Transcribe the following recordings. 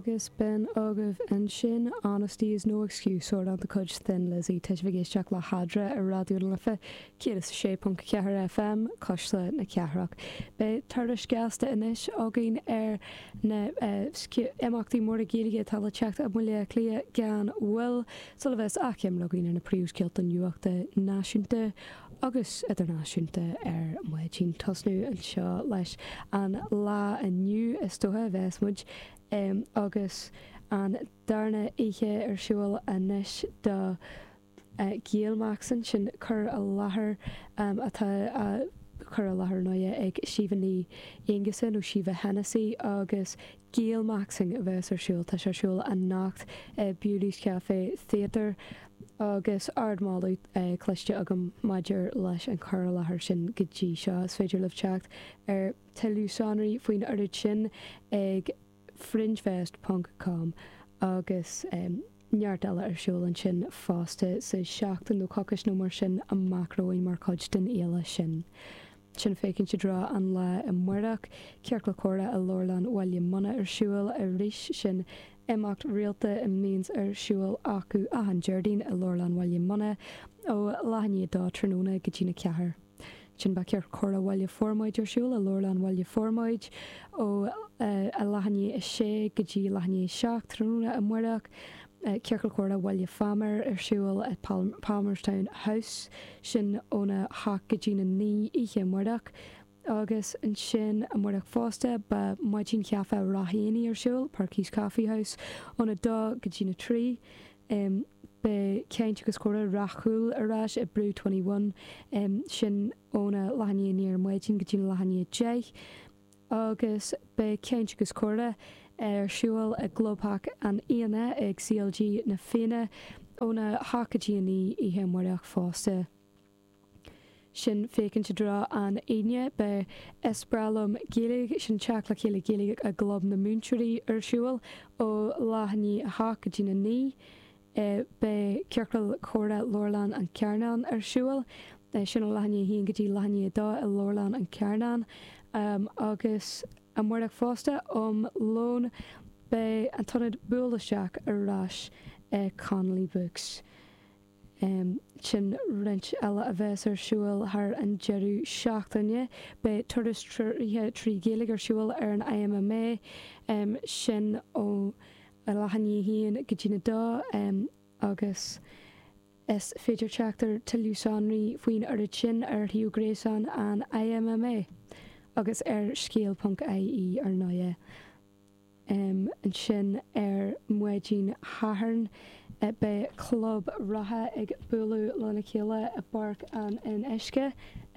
Agus b'in agaibh ansin, Honesty is no excuse, amhrán de chuid Thin Lizzy. Tá sibh ag éisteacht le hEadra ar Raidió na Life 106.4 FM, Cuisle na Cathrach. Beidh tuairisc ghasta anois againn ar na imeachtaí móra Gaeilge atá le teacht i mBaile Átha Cliath gan mhoill, sula bheas achoimre againn ar na príomhscéalta nuachta náisiúnta agus idirnáisiúnta ar maidin. Tosnú anseo leis an lá inniu, is dóiche, a bheas muid. Agus an darna oíche ar siúl anois do Gaelmaxxing sin cur i láthair atá á chur i láthair inniu ag Síomha Ní Aonghusa nó Síomha Hennessy agus Gaelmaxxing a bheas ar siúl. Tá sé ar siúl anocht i Bewley's Café Theatre agus ardmholadh cloiste agam maidir leis an cur i láthair sin go dtí seo. Is féidir libh teacht ar. Tuilleadh sonraí faoin oiread sin ag Fringefest ponc com agus neart eile ar siúl ansin fosta sa seachtain nó coicis nó mar sin amach romhainn mar chuid den fhéile sin. Sin féachaint i dtreo an lae amáireach. Ciorcal Comhrá i Leabharlann Bhaile Munna ar siúl arís sin imeacht rialta a mbíonns ar siúl acu achan Déardaoin i Leabharlann Bhaile Munna ó leath i ndiaidh dó tráthnóna go dtína ceathair. Sin beidh Ciorcal Comhrá Bhaile Formaid ar siúl i Leabharlann Bhaile Formaid ó leath i ndiaidh 6 go dtí leath i ndiaidh 7 tráthnóna amáireach. Ciorcal Comhrá Bhaile Phámar ar siúl i Palmerstown House, sin óna hocht go dtína naoi oíche amáireach. Agus ansin amáireach fosta beidh maidin chaife Ráth Eanaigh ar siúl, Perky's Coffee House, óna dó go dtína trí. em beidh caint agus comhrá Ráth Cúil ar ais i Brew Twenty One, em sin óna leath i ndiaidh a naoi ar maidin go dtína leath i ndiaidh a deich, agus beidh caint agus comhrá ar siúl i gclubtheach na Fianna ag CLG na Fianna óna hocht go dtí a naoi oíche amáireach fosta. sin féachaint i dtreo an Aoine. Beidh 'Is breá liom Gaeilge', sin teacht le chéile Gaeilge i gClub na Múinteoirí, ar siúl ó leath i ndiaidh a hocht go dtína naoi. Beidh Ciorcal Comhrá Leabharlann an Charnáin ar siúl, sin ó leath i ndiaidh a haon go dtí leath i ndiaidh a dó i Leabharlann an Charnáin. Agus amáireach fosta, um lón, beidh an t-ionad Buail Isteach ar ais i Connolly Books. Ansin roinnt eile a bheas ar siúl thar an deireadh seachtaine. Beidh turas treoraithe trí Ghaeilge ar siúl ar an IMMA, sin óna leath i ndiaidh 1 go dtí an 2, agus is féidir teacht ar tuilleadh sonraí faoin oiread sin ar shuíomh gréasáin an IMMA, agus ar scéal.ie, ar ndóigh. Ansin ar maidin Sathairn beidh club reatha ag bualadh lena chéile i bPáirc an Fhionnuisce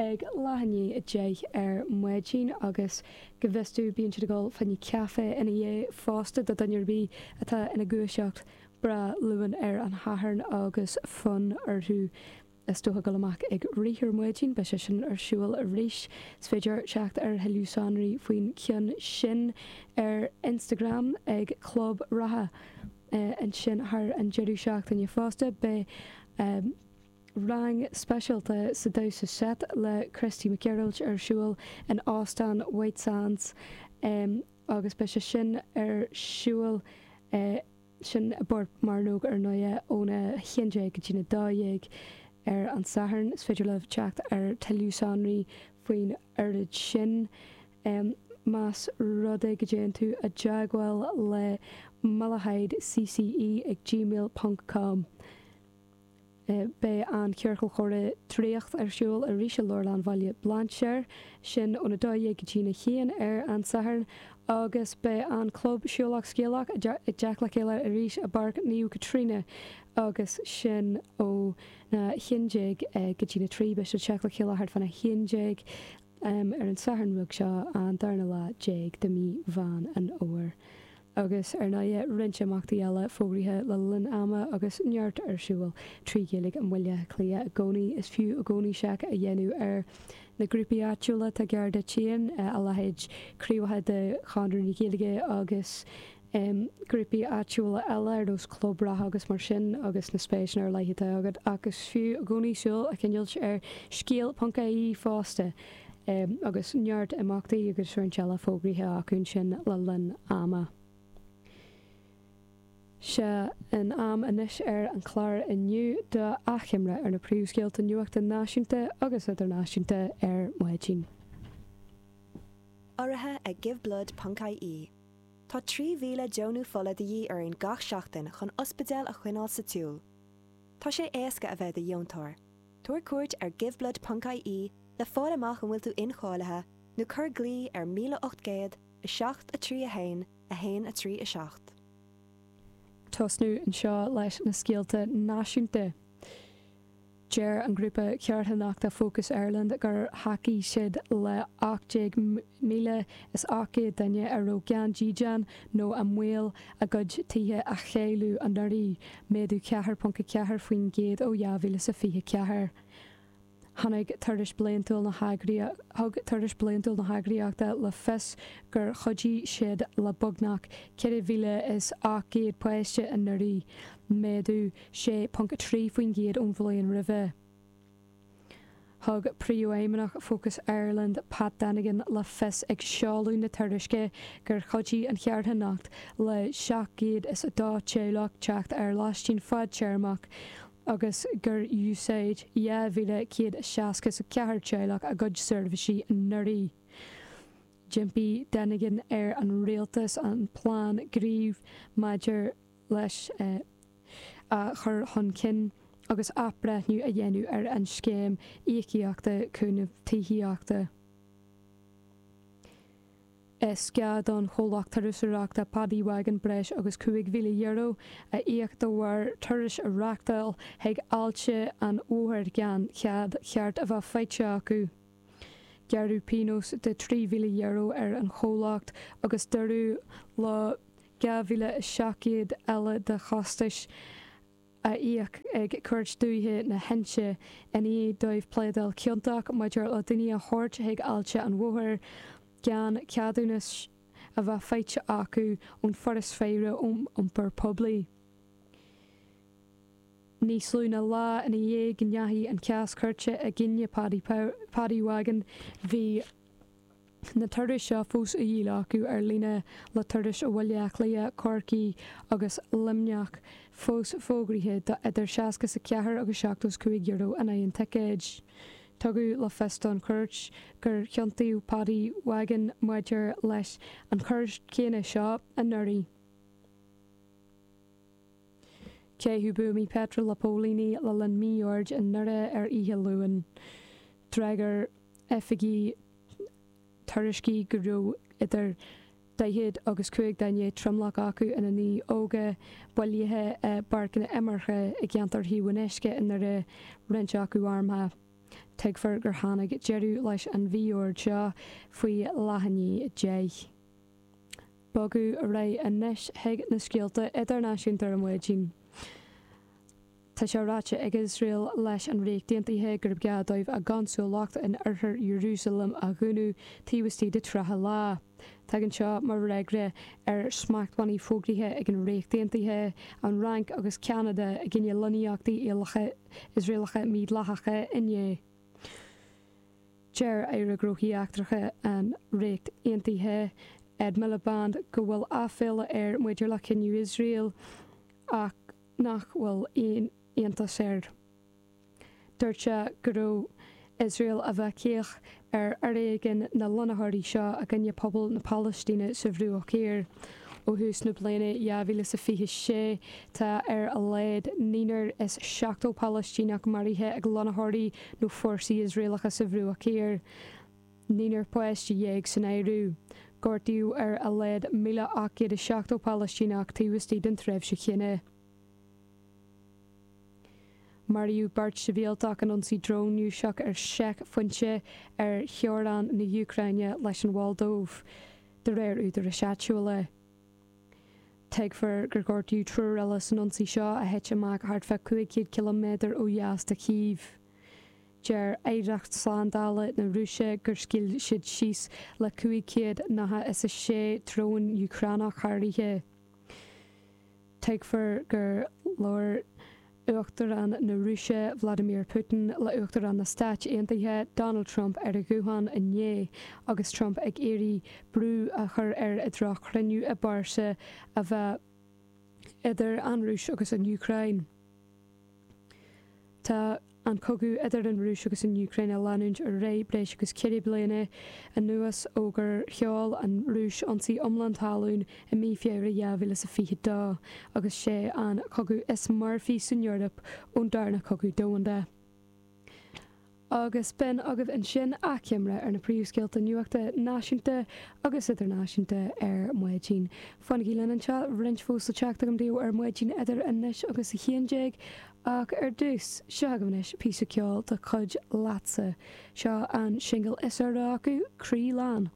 ag leath i ndiaidh a deich ar maidin agus go bhfios domh bíonn siad ag ól braon caife ina dhiaidh fosta do dhuine ar bith atá ina ndúiseacht breá luath ar an Shatharn agus fonn orthu le dul amach ag rith ar maidin, beidh sé sin ar siúl arís. Is féidir teacht ar thuilleadh sonraí faoin cheann sin ar Instagram ag Club Reatha. Ansin thar an deireadh seachtaine fosta beidh rang speisialta sa damhsa seit le Christy Mac Gearailt ar siúl in Óstán White Sands agus beidh sé sin ar siúl i Sin i bPort Mearnóg ar ndóighe óna haon déag go dtí na dó dhéag ar an Satharn. Is féidir leat teacht ar thuilleadh sonraí faoin oiread sin más rud é go dtéann tú i dteagmháil le malahide cce ag gmail ponc com. Beidh an Ciorcal Comhrá Draíocht ar siúl arís i Leabharlann Bhaile Bhlainséir, sin ón 12 go dtí'n 1 ar an Satharn, agus beidh an Club Siúlach Scéalach ag teacht le chéile arís i bPáirc Naomh Caitríona, agus sin ón 11 go dtí'n 3. Beidh siad ag teacht le chéile thart fán 11 ar an Satharn beag seo, an darna lá déag de mhí Mheán an Fhómhair. Agus, ar ndóighe, roinnt imeachtaí eile fógraithe le linn ama agus neart ar siúl trí Ghaeilge i mBaile Átha Cliath i gcónaí, is fiú i gcónaí seic a dhéanamh ar na grúpaí áitiúla atá gar duit féin, a leithéid craobhacha de Chonradh na Gaeilge agus grúpaí áitiúla eile ar nós Club Reatha agus mar sin agus na spéiseanna ar leith atá agat. Ach is fiú i gcónaí súil a choinnilt ar scéal ponc IE fosta, agus neart imeachtaí agus ócáidí eile fógraithe acu ansin le linn ama. Seo an am anois ar an chlár inniu d'achoimre ar na príomhscéalta nuachta náisiúnta agus idirnáisiúnta ar maidin. Urraithe ag Giveblood ponc IE, Tá 3,000 deonú fola de dhíth orainn gach seachtain chun ospidéil a choinneáil sa tsiúl. Tá sé éasca a bheith i do dheontóir. Tabhair cuairt ar Giveblood ponc IE le fáil amach an bhfuil tú incháilithe nó cuir glao ar 1800 7 3 1 1 3 7. tosnú anseo leis na scéalta náisiúnta. Deir an grúpa carthanachta Focus Ireland gur thacaigh siad le 18,800 duine a raibh gan dídean nó i mbaol a gcuid tithe a chailleadh anuraidh, méadú ceathair ponc a ceathair faoin gcéad ó dhá mhíle is a fiche ceathair. Tháinig, thug tuairisc bliantúil na heagraíochta le fios gur chuidigh siad le beagnach ceithre mhíle is ocht gcéad páiste anuraidh, méadú sé ponc a trí faoin gcéad ón bhliain roimhe. Thug Príomhfheidhmeannach Focus Ireland, Pat Dennigan, le fios ag seoladh na tuairisce gur chuidigh an charthanacht le 702 teaghlach teacht ar lóistín fadtéarmach agus gur úsáid 2,164 teaghlach a gcuid seirbhísí anuraidh. D'impigh Dennigan ar an rialtas an plean gnímh maidir leis é a chur chun cinn agus athbhreithniú a dhéanamh ar an scéim íocaíochta cúnaimh tithíochta. Is gá don chomhlacht turasóireachta Paddy Wagon breis agus €5,000 a íoc de bharr turais a reáchtáil chuig Aillte an Mhothair gan cead cheart a bheith faighte acu. Gearradh pionós de €3,000 ar an chomhlacht agus dúradh leo 2,700 eile de chostais a íoc ag Cúirt Dúiche na hInse i ndiaidh dóibh pléadáil ciontach maidir le daoine a thabhairt chuig Aillte an Mhothair gan ceadúnas a bheith faighte acu ón Fhoras Faire Iompair Poiblí. Níos lú ná lá ina dhiaidh go ndeachaigh an cás cúirte i gcoinne Paddy Wagon, bhí. na turais seo fós á dhíol acu ar líne, le turais ó Bhaile Átha Cliath, Corcaigh agus Luimneach fós fógraithe do idir 60 is 4 agus 70 is 5 euro in aghaidh an ticéid. Tugadh le fios don chúirt gur chiontaíodh Paddy Wagon maidir leis an choir chéanna seo anuraidh. Caitheadh buamaí peitril le póilíní le linn mí-oird i nDoire ar Oíche Luain. D'fhreagair oifigigh tuairiscí go raibh idir 40 agus 50 duine tromlach acu ina ndaoine óga, bailithe i bpáirceanna imeartha i gceantar Thaobh an Uisce i nDoire, roinnt acu armtha. Tuigfear gur tháinig deireadh leis an mhí-ord seo faoi leath i ndiaidh a deich. bogadh ar aghaidh anois chuig na scéalta idirnáisiúnta ar maidin. Tá sé ráite ag Iosrael leis an Ríocht Aontaithe gurb gá dóibh a gconsúlacht in oirthear Ierúsaleim a dhúnadh taobh istigh de 30 lá. Tagann seo mar fhreagra ar smachtbhannaí fógraithe ag an Ríocht Aontaithe, an Fhrainc agus Ceanada i gcoinne lonnaíochtaí Iosraelacha mídhleathacha inné. Deir Aire Gnóthaí Eachtracha an Ríocht Aontaithe, Ed Miliband, go bhfuil aiféala air maidir le cinneadh Iosrael ach nach bhfuil aon iontas air. Dúirt sé go raibh Iosrael ag bheith caoch ar fhoréigean na lonnaitheoirí seo i gcoinne pobal na Palaistíne sa Bhruach Thiar. Ó thús na bliana 2026, tá ar a laghad naonúr is seachtó Palaistíneach maraithe ag lonnaitheoirí nó fórsaí Iosraelacha sa Bhruach Thiar. Naonúr páiste déag san áireamh. Gortaíodh ar a laghad 1,870 Palaistíneach taobh istigh den tréimhse chéanna. Maraíodh beirt sibhialtach in ionsaí drón Rúiseach ar sheicphointe ar theorainn na hÚcráine leis an Mholdóiv, de réir údaráis áitiúla. Tuigtear gur gortaíodh triúr eile san ionsaí seo, a thit amach thart fá 500 ciliméadar ó dheas de Chív. Deir aireacht slándála na Rúise gur scaoil siad síos le 500 nath is 6 drón Úcránach thar oíche. Tuigtear gur labhair Uachtarán na Rúise Vladimir Putin le Uachtarán na Stáit Aontaithe Donald Trump ar a ghuthán inné agus Trump ag iarraidh brú a chur air i dtreo cruinniú i bpearsa a bheith idir an Rúis agus an Úcráin. Tá an cogadh idir an Rúis agus an Úcráin ag leanúint ar aghaidh breis agus ceithre bliana anuas ó gur sheol an Rúis ionsaí iomlán talún I mí Feabhra 2022, agus sé an cogadh is marfaí san Eoraip ón darna cogadh domhanda, agus b'in agaibh ansin achoimre ar na príomhscéalta nuachta náisiúnta agus idirnáisiúnta ar maidin. Fanaigí linn anseo, roinnt fós le teacht agam daoibh ar maidin idir anois agus a haon déag, ach ar dtús, seo agaibh anois píosa ceoil de chuid Leatsa. Seo an singil is úire acu, Croí Lán.